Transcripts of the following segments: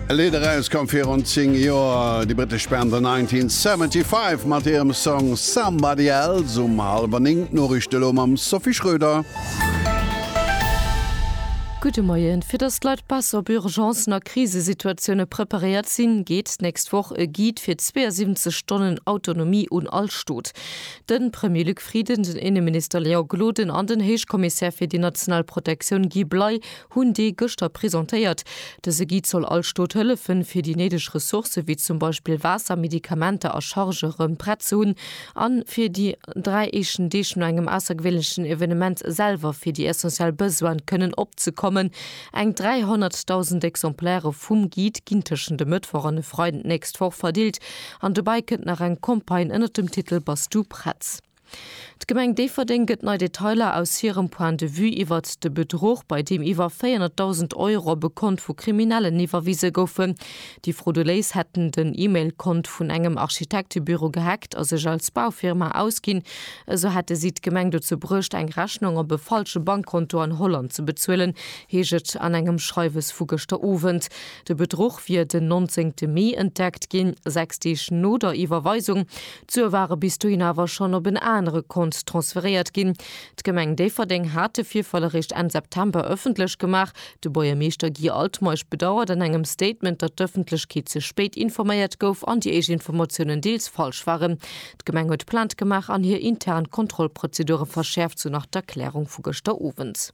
E Lidd erauskomm virun 10 Joer, déi brittesch Band The 1975 mat hirem Song Somebody Else. Um hallwer 9 d'Noriichte elo mam Sophie Schröder. Gudde Moien. Fir datt d'Leit besser op Urgencen a Krisesituatioune preparéiert sinn, geet d'nächst Woch e Guide fir 72 Stonnen Autonomie un all Stot. De Premier Luc Frieden, den Inneminister Léon Gloden an den Héichkommissär fir déi national Protektioun Guy Bley hunn dee gëschter presentéiert. Dëse Guide soll all Stot hëllefen, fir déi néideg Ressourcë wéi zum Beispill Waasser, Medikamenter a Chargë rëm prett ze hunn a fir déi dräi éischten Deeg no engem aussergewéinlechen Evenement selwer fir déi essentiell Besoine kënnen opzekommen. Eng 300.000 Exemplairë vum Guide ginn tëschent e Mëttwoch an e Freiden d'nächst Woch verdeelt an dobäi kënnt nach eng Campagne ënnert dem Titel Bass du prett? D'Gemeng Déifferdeng gëtt nei Detailer aus hirem Point de vue iwwert de Bedruch, bei deem iwwer 400.000 Euro op e Kont vu Kriminellen iwwerwise goufen. Déi Frodoléis hätten den E-Mail-Kont vun engem Architektebüro gehackt a sech als Baufirma ausginn. Esou hätte si d'Gemeng dozou bruecht, eng Rechnung op e falsche Bankkonto an Holland ze bezuelen, heescht et an engem Schreiwes vu gëschter Owend. De Bedruch wier den 19 Mee entdeckt ginn, sechs Deeg no der Iwwerweisung. D'Sue ware bis dohin awer schonn op en anere Kont transferéiert ginn. D'Gemeng Déifferdeng hat de Virfall eréischt Enn September ëffentlech gemaach. De Buergermeeschter Guy Altmeisch bedauert an engem Statement, datt d'Ëffentlechkeet ze spéit informéiert gouf an déi éischt Informatiounen deels falsch waren. D'Gemeng huet Plainte gemaach an hir intern Kontrollprozedure verschäerft, sou nach d'Erklärung vu gëschter Owend.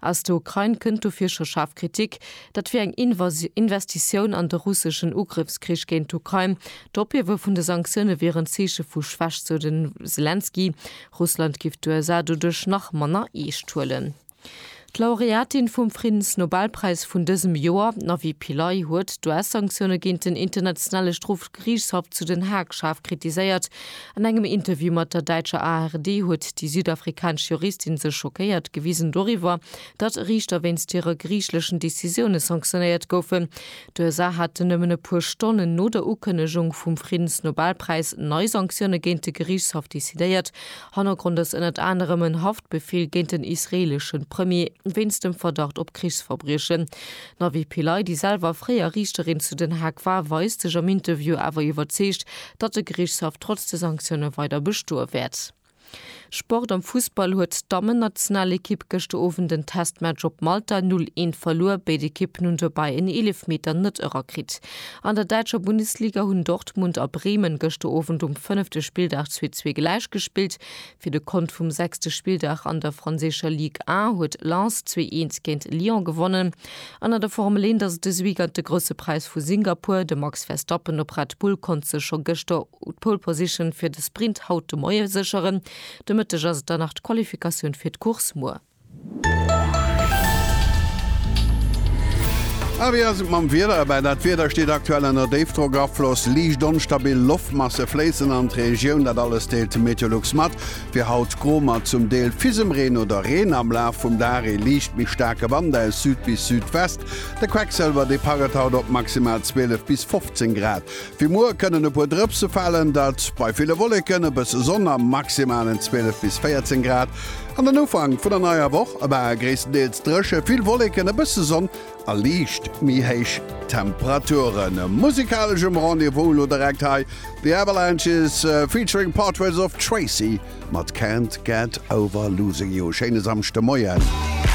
Aus der Ukrain kënnt dofir scho schaarf Kritik, dat wier eng Investitioun an de russeschen Ugrëffskrich géint d'Ukrain. D'Ophiewe vun de Sanktioune wier en Zeeche vu Schwächt, sou de Selenskyj. Russland giff d'USA doduerch nach manner eescht huelen. D'Laureatin vum Friddensnobelpräis vun dësem Joer, d'Navi Pillay, huet d'US-Sanktioune géint den Internationale Strofgeriichtshaff zu Den Haag schaarf kritiséiert. An engem Interview mat der däitscher ARD huet déi südafrikanesch Juristin sech schockéiert gewisen doriwwer, datt Riichter wéinst hire griichleschen Decisioune sanktionéiert goufen. D'USA haten nëmmen e puer Stonnen no der Ukënnegung vum Friddensnobelpräis nei Sanktioune géint de Geriichtshaff decidéiert. Hannergrond ass ënnert anerem en Haftbefeel géint den israeelesche Premier wéinst dem Verdacht op Krichsverbriechen. D'Navi Pillay, déi selwer fréier Riichterin zu Den Haag war, weist sech am Interview awer iwwerzeegt, datt de Geriichtshaff trotz de Sanktioune weider bestoe wäert. Sport Am Fussball huet d'Dammennationalekipp gëschter Owend en Testmatch op Malta 0, 1 verluer. Béid Ekippen hunn dobäi en Eelefmeter net erakritt. An der däitscher Bundesliga hunn Dortmund a Bremen gëschter Owend um fënnefte Spilldag zwee, zwee gläich gespillt. Fir de Kont vum sechste Spilldag an der franséischer Ligue 1 huet Lens zwee Eens géint Lyon gewonnen. An an der Formel 1 ass et dës Weekend de Grousse Präis vu Singapur. De Max Verstappen op Red Bull konnt sech scho gëschter d'Pole Position fir de Sprint haut de Moie sécheren. De Mëtteg ass et dann nach d'Qualifikatioun fir d'Course muer. A wéi ass et mam Wieder erbäi? Dat Wieder steet aktuell ënner Déifdrockafloss. Liicht onstabil Loftmasse fléissen an d'Regioun. Dat alles deelt Meteolux mat. Fir haut gro mat zum Deel fisem Reen oder Reen. Am Laf vum Dag ee liicht méi staarke Wand aus Süd bis Südwest. De Quecksëlwerdepart gëtt haut op maximal 12 bis 15 Grad. Fir muer kënnen e puer Drëpse falen, dat bei ville Wolleken, e bësse Sonn a maximalen 12 bis 14 Grad. An den Ufank vun der neier Woch war gréisstendeels dréche, vill Wolleken, e bësse Sonn a liicht méi héich Temperaturen. Musikaleschem Rendez-vous elo direkt hei The Avalanches featuring Portraits of Tracy mat Can't Get Over Losing You. Schéine Samschdemoien.